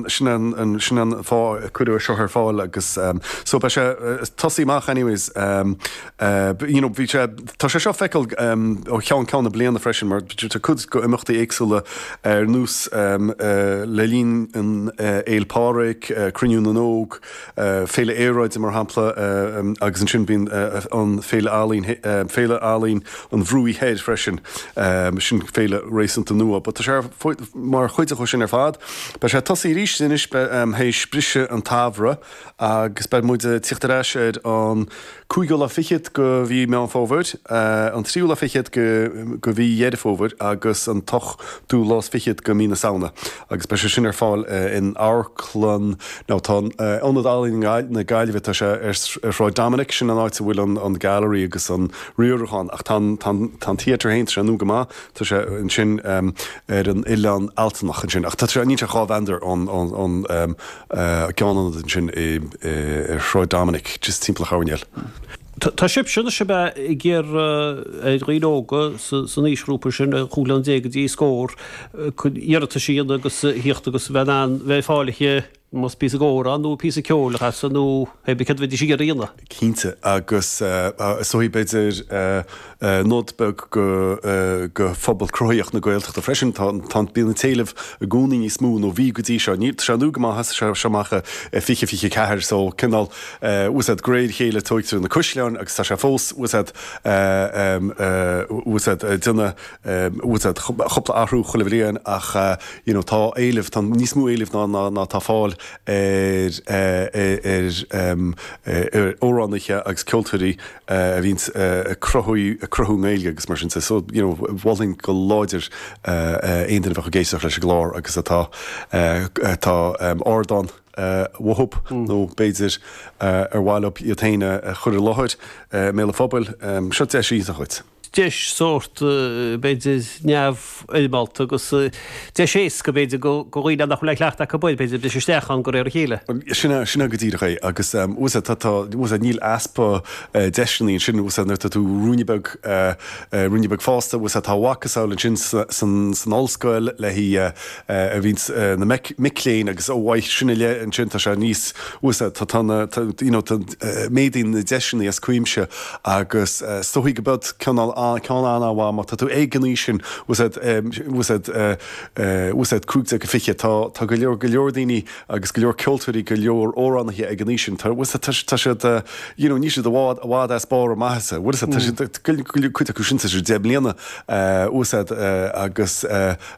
Sin an, sin an fáth a cuireadh seo ar fáil agus so beidh sé tosaí amach anyways. You know, bhí sé, tá sé seo feiceáil ó cheann ceann na bliana freisin mar tá cuid go imeachtaí éagsúla ar nós le linn an Fhéil Pádraig, Cruinniú na nÓg, Féile Aeráide, mar shampla, agus ansin bíonn an Féile Ealaíon, Féile Ealaíon an Bhruaigh Thoir freisin, sin féile réasúnta nua, but tá sé mar chuid de sin ar fad. Beidh sé ag tosaí arís anois, beidh, théis briseadh an tsamhraidh agus beidh muid ag tíocht ar ais ar an, cúigiú lá fichead de mhí Mheán Fómhair, an tríú lá fichead de mhí Dheireadh Fómhair agus an t-ochtú lá is fichead de mhí na Samhna agus beidh sé sin ar fáil in amharclann nó tá Ionad Ealaíon na Gaillimhe, tá sé ar Shráid Dominic, sin an áit a bhfuil an Gallery agus an riarachán ach tá an Theatre féin, tá sé nua go maith, tá sé ansin ar an Oileán Ealtanach ansin ach tá sé, níl sé dhá mheandar ón a gceann ionad ansin i ar Shráid Dominic, just timpeall an choirnéil. Tá sibhse, anois ab ea, ag iarraidh ar dhaoine óga san aoisghrúpa sin, chúig bliana déag go dtí scór, iarratais a dhéanamh agus a thíocht agus a bheith in ann bheith fáilithe, más píosa amhráin nó píosa ceoil a chasadh nó cé bith céard a bheidís ag iarraidh a dhéanamh? cinnte, agus is dóigh, b'fhéidir, nod beag go phobal cruthaitheach na Gaeltachta freisin, tá bíonn an t-éileamh i gcónaí níos mó, nó bhí go dtí seo, níl, tá sé nua go maith, thosaigh sé amach i fiche fiche a ceathair, so cineál, fhios a'd, de réir a chéile tóigtear na caisleáin agus tá sé fós, fhios a'd, fhios a'd, ag déanamh, fhios a'd, cúpla athrú chuile bhliain ach you know tá éileamh, tá níos mó éileamh ná ná tá fáil ar amhránaithe agus ceoltóirí a bhíonns ag cruthú i nGaeilge agus mar sin de. So, you know, mholfainn go láidir aon duine a bheadh ag éisteacht leis an gclár agus atá atá ardán uathub nó b'fhéidir ar mhaith leo iad féin a chur i láthair i mbéal an phobail. Seo deis iontach dhuit. deis sórt, b'fhéidir, neamhfhoirmeálta agus deis éasca, b'fhéidir, do dhaoine nach bhfuil aon chleachtadh acu, b'fhéidir, briseadh isteach ann de réir a chéile. Sin é go díreach é agus tá, níl easpa deiseanna ansin, nuair atá tú ruainne beag, ruainne beag fásta, tá a mhacasamhail ansin san ollscoil le. a bhíonn na mic léinn agus uaidh sin i leith ansin tá sé níos fusa, tá na, you know, méadaíonn na deiseanna as cuimse agus is dóigh go mbeadh ceann an-mhaith má tá tú ag an aois sin, fhios a'd, fhios a'd, fhios a'd, 15-20, tá, tá go leor, go leor daoine agus go leor ceoltóirí, go leor amhránaithe ag an aois sin, tá, fhios a'd, tá, tá siad, you know, níl siad i bhfad, i bhfad as barr a maitheasa, fhios a'd, tá siad, cuid acu sin tá siad deich mbliana, fhios a'd, agus.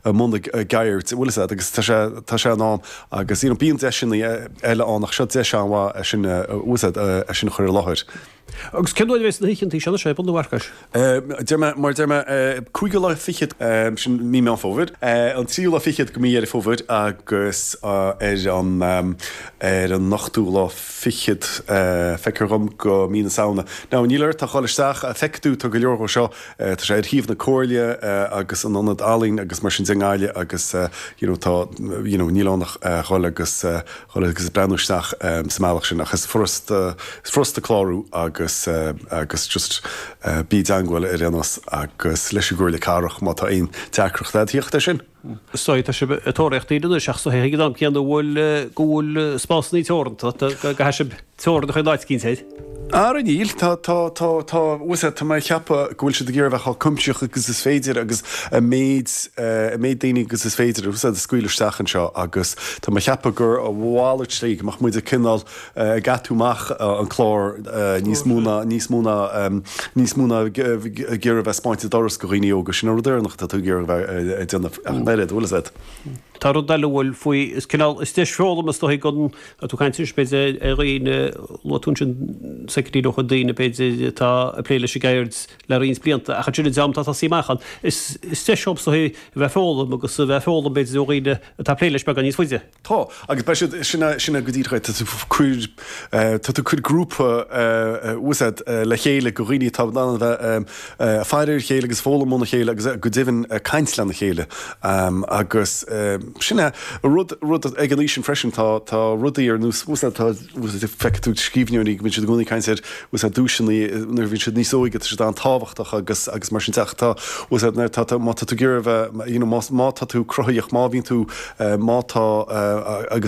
i mbun a gceird bhfuil a fhios agat agus tá sé tá sé in am agus you know bíonn deiseanna eile ann ach seo deis an-mhaith é sin bhfuil a fhios agat é sin a chur i láthair. Agus cén dóigh a bheas na hoícheanta seo anois ar bun a Mharcais? Deir mé mar deir mé cúigiú lá fichead sin mí Meán Fómhair an tríú lá fichead de mhí Dheireadh Fómhair agus ar an ar an ochtú lá fichead feictear dhom de mhí na Samhna. Now níl ort ach dhul isteach feicfidh tú tá go leor dhó seo Tá sé ar shuíomh na Comhairle agus an Ionad Ealaíon agus mar sin de i nGaillimh agus you know tá you know níl ann ach dhul agus dhul agus breathnú isteach sa mbealach sin ach is furasta is furasta clárú agus agus just bí i dteagmháil ar aon nós agus leis an gComhairle Cathrach má tá aon deacracht. D'fhéadfaí é sin. Is dóigh, tá sibh ag tóraíocht daoine anois ach ag an am céanna go bhfuil spásanna teoranta, go gcaithfidh sibh teorainn a chur in áit eicínt. Ara níl, tá, tá, tá, tá, bhfuil a fhios agat, tá mé ag ceapadh go bhfuil siad ag iarraidh a bheith chomh cuimsitheach agus is féidir agus an méid, an méid daoine agus is féidir, a scaoileadh isteach anseo agus tá mé ag ceapadh gur a mhalairt go mbeadh muid cineál ag geatú amach an clár níos mó ná níos mó ná níos mó ná ag iarraidh a bheith ag spáint an doras go dhaoine óga. Sin an rud deireanach atá tú ag iarraidh a bheith ag déanamh. Ach an oiread, bhfuil a fhios agat? Tá rud eile a bhfuil faoi, is cineál, is deis foghlama is dóichí gan atá tú ag caint anois, b'fhéidir, ar dhaoine, luaigh tú ansin saiceadíleocha, daoine, b'fhéidir, atá ag plé leis an gceird le roinnt blianta ach ansin dream atá ag tosaí amach ann. Is deis dhóibh, is dóichí, a bheith ag foghlaim agus a bheith ag foghlaim, b'fhéidir, ó dhaoine atá ag plé leis beagán níos faide. Tá, agus beidh siad, sin é, sin é go díreach é. Tá tú, cuir, tá tú ag cur grúpa, bhfuil a fhios agat, le chéile, go dhaoine atá in ann a bheith, ag faire ar a chéile agus foghlaim óna chéile agus, go deimhin, caint lena chéile. Agus, sin é, rud, rud, ag an aois sin freisin tá, tá rudaí ar nós, bhfuil a fhios agat, tá, feicfidh tú scríbhneoirí go mbíonn siad i gcónaí ag caint ar bhfuil a fhios agat duaiseanna nuair a bhíonn siad níos óige, tá siad an-tábhachtach agus agus mar sin de ach tá bhfuil a fhios agat nuair tá tá má tá tú ag iarraidh a bheith má tá tú cruthaitheach, má bhíonn tú má tá agus.